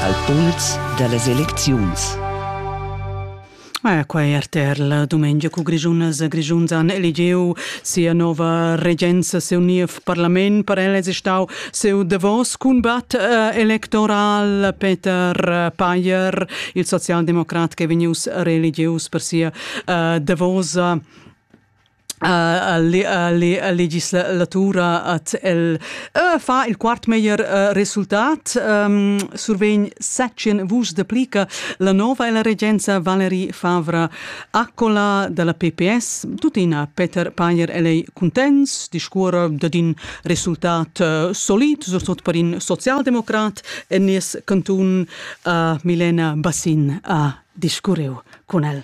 al puls da las elecziuns. Ah, quai è RTR la dumengia cu Grischunas e Grischuns han eligiu sia nova regenza, seu niev parlament. Per el è stau seu davos combat eh, electoral Peter Payer, il socialdemocrat che vegnius reeligius per sia eh, davosa legislatura at el fa il quart meglier resultat survegn secien vus deplica la nova e la regenza Valerie Favra Accola dalla PPS tuttina Peter Payer e lei contents discuora dad in resultat solid sot per in socialdemokrat e nies cantun Milena Bassin a discurreu con el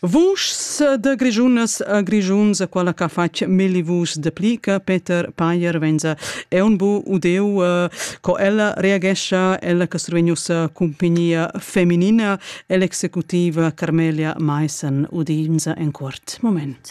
Vuschs de Grischunas a Grischuns, quella che ha fatg milli vuschs de plica, Peter Payer venza, è un bu udeu eh, co ella reagescha, ella che survegnusa compagnia feminina, e l'executiva Carmelia Maissen udinza en quart moment.